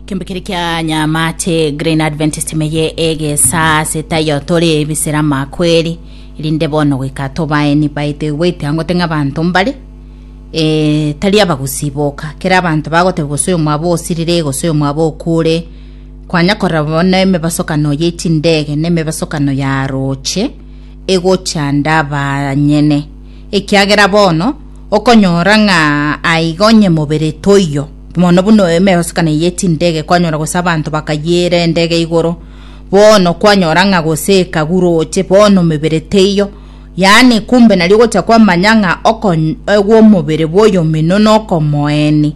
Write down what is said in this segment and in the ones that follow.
Kembekere kia nyamate Green Adventist meye egesa setayo tore ebisera makweri rinde bono goika tobaeni baito igwete angote ng'a banto mbare e, tari abagusiboka kera abanto bagoteba gose oyo mwaba osirire gose oyo mwaba okure kwanya korora bono emebasokano ye chindege na emebasokano ya roche egochanda abanyene ekiagera bono Okonyora ng'a aiga onye mobere toiyo, mono buna emegosekano eye tindege kwanyora gose abanto bakayiira endege igoro, bono kwanyora ng'a gose ekaguroche, bono mebere teiyo. Yaani kumbe nario gocha kwamanya ng'a okony egwa omobere bw'oyomino nokomoeni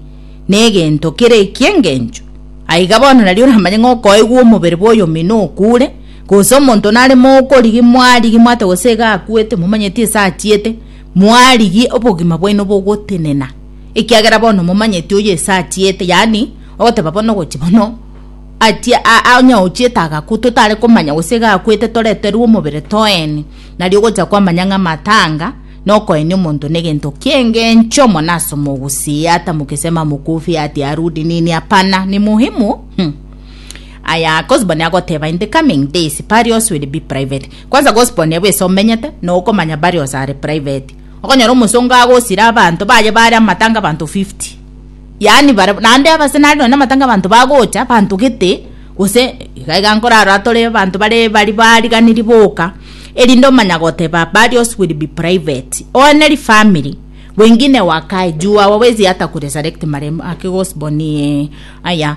negento kere eki'engencho. Aiga bono nario oramanye ng'a okoegwa omobere bw'oyomino okure, gose omonto nare mogokorigia mwarigi mwate gose iga akwete momanyeti ase achiete, Moarigie obogima bwaino bogotenena, ekiagera bono momanyeti oyo ase achiete, yaani, ogoteba bono ogochi bono, achie a onye ochiete agakwa totare komanya gose iga akwete toreterwe omobere toeni, nario ogocha kwamanya ng'a amatanga nokoenia omonto negento kiengencho mono ase omogusii ata mukisema mukufi hati arudi nini hapana ni muhimu mh aya cause bono agoteba in the coming days burials will be private. Kwanza gospel neba ase omenyete na okomanya bare ose are private. Okonyora omosongo agosira abanto baye bare amatanga abanto 50. Yaani bare naende abase nare nonye amatanga abanto bagocha abanto gete gose iga iga nkorara atore abanto bare bari bariganiri boka erinde omanya goteba burials will be private. One ri family wengine wakae juu our ways hata kuresurrect marehemu ake gospel ni aya.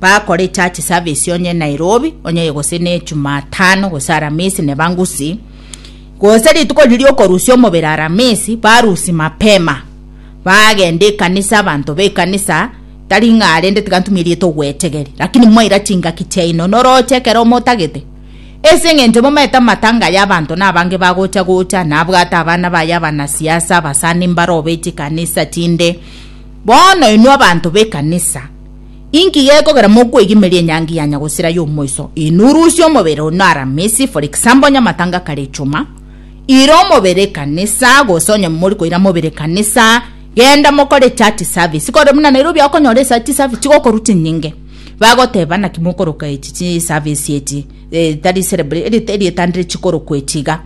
bakore echurch service onye nairobi onye gose ne jumatano gose aramisi nebangusi gose rituko riria okorusia omobere aramisi barusi mapema bagenda ekanisa abanto bekanisa tari ng'a arende tiga ntumia erieta ogwechegeri lakini mwaira chingaki chiaino noroche ekero omotagete ase eng'encho momaete amatanga ya abanto na abange bagocha gocha nabwate abana baye abanasiasa abasani mbarobe chikanisa chinde bono inwe abanto bekanisa Inki gekogera mokwegimeria enyangi ya nyagosira y'omoiso? Inurusie omobere onye Aramisi, for example, onye amatanga kare Echuma. Ira omobere ekanisa, gose onye mori koira mobere ekanisa, genda mokore echurch service. Kore buna Nairobi okonyora echurch service chigokorwa chinyinge. Bagoteba naki mokoroka echi chi service echi, eh, tari celebra- eri- erieta ndire chikorokwa echi iga.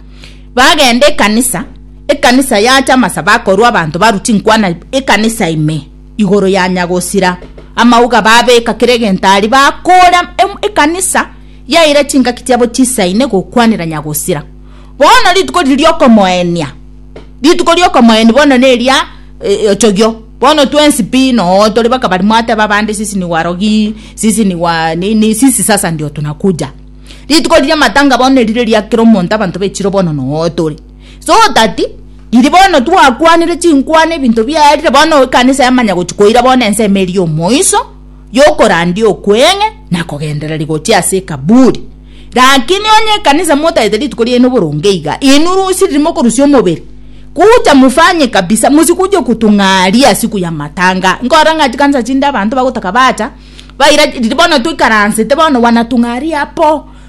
Bagenda ekanisa, ekanisa yacha amasabo akorwa abanto barwa chinkwana ekanisa ime. igoro ya nyagosira amauga babeka kera egento aria bakora ekanisa yaira chingaki chiabo chisaine gokwanera nyagosira bono rituko riri riokomoenia rituko riokomoeni bono neria ochogio bono twensi pi noo tori baka bari mwateba abande sisi ni warogi sisi ni wa nini sisi sasa ndio tunakuja rituko riria matanga bono erire riakera omonto abanto bechire bono noo tori. so that riria bono twakwanire chinkwana ebinto biaye riria bono ekanisa yamanya gochia koira bono ensemo eria ya omoiso yokorandia okweng'e na kogendereri gochia ase ekaburi rakini onye ekanisa motagete rituko riaino boronge iga inwe rusi riria mokorusia omobere kuja mufanye kabisa mosikuje kotong'aria siku ya matanga nkorora ng'a chikanisa chinde abanto bagotaka bacha baira riria bono toikaransete bono wanatong'aria apo.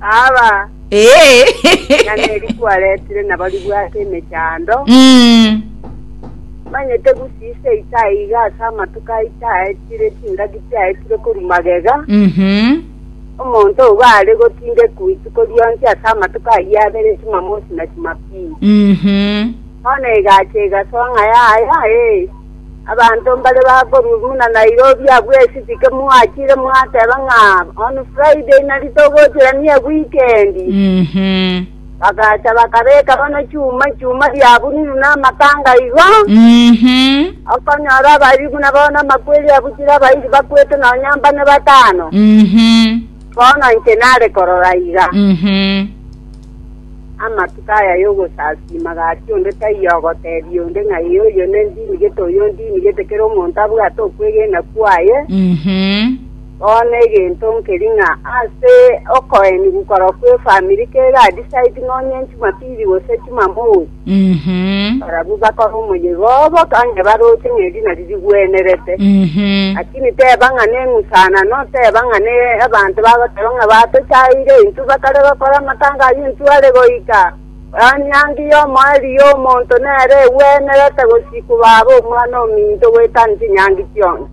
Aba Ee. ng'ana eri kwaretire nabo ribwate emechando, Mm. manyete gusisa eita aiga ase amatuko aye chiaetire, chingaki chiaetire korwa magega. Mhm. Omonto ogo are gotindekwa rituko rionsi ase amatuko ayio abere Jumamosi na Jumapili. Mhm. Bono egacha egasoa ng'a yaya, ee, Abanto mbare bakorua buna Nairobi abwo esibike mwachire mwateba ng'a on Friday nari togochira niye weekend. Mhm. Bagacha bakabeka bono chuma chuma biabunirwe namakanga igo. Mhm. Okonyora abari buna bono amakweri abuchire abairi bakwete nonya mbane batano. Mhm. Bono inche nare korora iga. Mhm. Amatuko aya y'ogosasiima gati onde taiyo ogotebia onde ng'a ee oyo nendinigete, oyo ondinigete, kera omonto abwate okwegena kwaye. Mhm. Bono egento nkeri ng'a ase okoenigwa korokwa efamiri kegadisaidi nonye Jumapili gose Jumamosi. Mhm. Barabwo bakora omoyega obo onye baroche ng'a erina ririgwenerete. Mhm. Lakini teba ng'a neng'usanano, teba ng'a ne abanto bagoteba ng'a batochaire, intwe bakare gokora amatanga ayio intwe are goika. Enyangi y'omoerio y'omonto nere egwenerete gosika baba omwana ominto goetania chinyangi chionsi.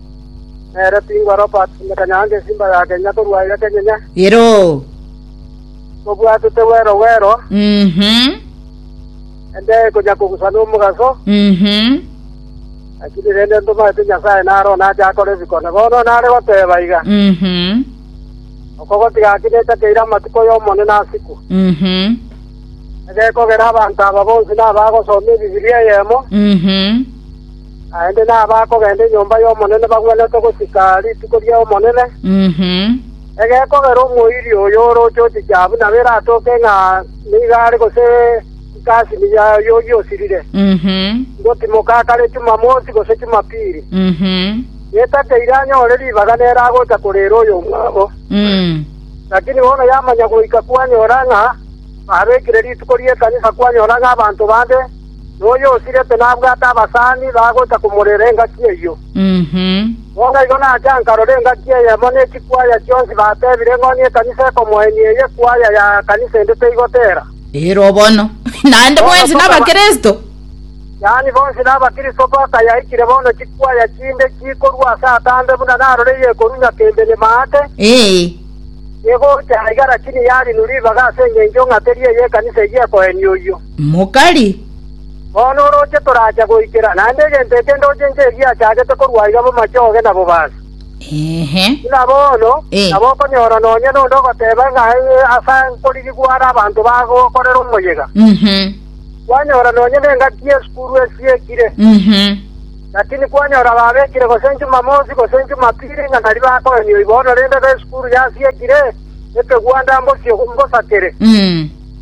Nere tingwa Robert ime kanyaange esimba ya Kenya korwa aya kenyene. Ero. Tobwatete wero wero, Mhm. ende ekonya kogusa nomogaso, Mhm. lakini rende ntomanyete Nyasae nare onache akore bikone. Bono nare goteba iga, Mhm. okogotiga aki necha keira amatuko y'Omonene asiku. Mhm. Egekogera abanto aba bonsi nabagosoma Ebibilia eyemo, Mhm. Naende nabakogenda enyomba y'Omonene bagwenerete gochika rituko ri'Omonene, egekogera omoiria oyo orooche oticha abwo nabo eratoke ng'a nigo are gose nkasini yaye oyio osirire, ngotimoka kare Chumamosi gose Chumapili, getakeire anyore ribaga nere agocha koreera oyomwabo. Lakini bono yamanya goika kwanyora ng'a babekire rituko ri'ekanisa kwanyora ng'a abanto bande, noyosirete nabwate abasani bagocha komorera engaki eyio. Bono igo nacha nkarora engaki eyemo ne chikwaya chionsi batebire ng'o nekanisa ekomoenia eye kwaya ya kanisa ende teigotera. Ero bono naende mwensi n'Abakristo. Yaani bonsi n'Abakristo bakayaikire bono chikwaya chinde chikorua ase atambe buna narore yekorunya kembe ne maate. Ee. Egocha aiga rakini yarinu ribaga ase engencho ng'a teri eye ekanisa eyio ekoenia oyio. mokari. Bono orooche toracha goikera, naende egento eke ndochenche egiachagete korwa aiga bomache oge na bobaasi. Ehe. Buna bono, Eh. nabo okonyora nonya nonde ogoteba ng'a ee, ase nkorigi gware abanto bagokorera omoyega. Mhm. Kwanyora nonya nengaki y'esukuru esiekire, Mhm. lakini kwanyora babekire gose Jumamosi gose Jumapili ng'a nari bakoeni oibono rende esukuru yasiekire, ekegwanda mbosio mbosakere. Mm.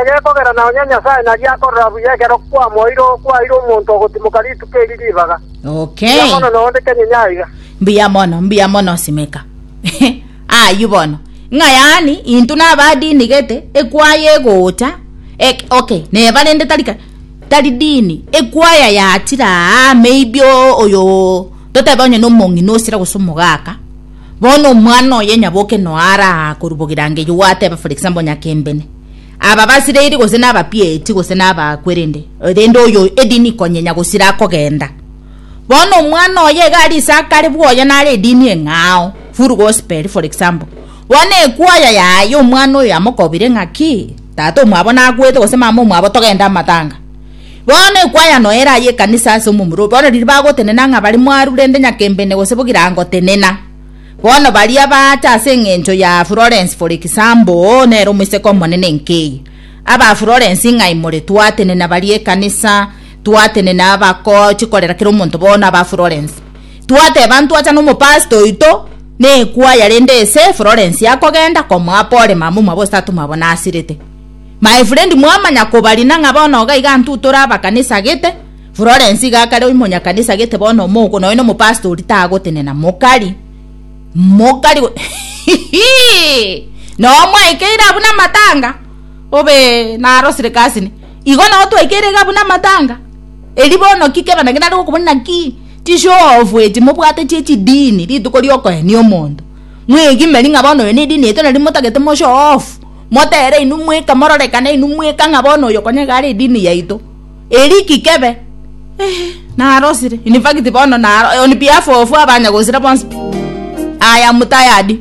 Egekogera na onye Nyasae nari akorora buya ekero kwamoeire okwaire omonto ogotimoka rituko eri ribaga. Okay. Mbuya mono noonde kenyinya aiga. Mbuya mono, mbuya mono simeka. Ayio bono. Ng'a yaani intwe naba dini gete ekwaya egocha ek, okay neba rende tari ka- tari dini ekwaya yachira aa maybe o- oyo totebe onye nomong'ina osira gose omogaka Bono omwana oye nyaboke noara aa korwa bogirangeyo gwateba for example nyakembene aba basireiri gose nabapieti gose nabakwe rende rende oyo edini konyenya gosira akogenda bono omwana oye iga ari ase akare bwoye nare edini eng'ao full gospel for example bono ekwaya yaye omwana oyo yamokobire ng'aki tata omwabo nakwete gose mama omwabo togende amatanga Bono ekwayano ere aye ekanisa ase omomura obo, bono riria bagotenena ng'a bare mwaru rende nyakembene gose bo girangotenena. Bono baria baacha ase engencho ya Florence for example, oo nere omoiseke omonene nkeiyo. Aba Florence ing'ai more? Twatenena baria ekanisa, twatenena abakoo chikorera kera omonto bono aba Florence. Twateba ntwacha na omopastor oito na ekwaya rende ese Florence akogenda komoa pole mama omwabo gose tata omwabo nasirete. My friend mwamanya kobarina ng'a bono iga iga intwo tore abakanisagete. Florence iga kare oimonyakanisagete bono omouko nonya omopastori tagotenena mokari mokari hihi noo mwaikeire abwo namatanga obee narosire kasini igo noo twaikeire iga abwo namatanga eri bono ki kebana ki nare gokobuna ki chishow off echi mobwate chie chidini rituko riokoenia omonto mwegimerie ng'a bono eye nedini yaito nari motagete mo show off. Motere inwe mweka, mororekane inwe mweka ng'a bono oyo konya iga are edini yaito. Eri ki kebe? Eeh, narosire. In fact bono naro on behalf of abanya gosira bonsi, I am tired.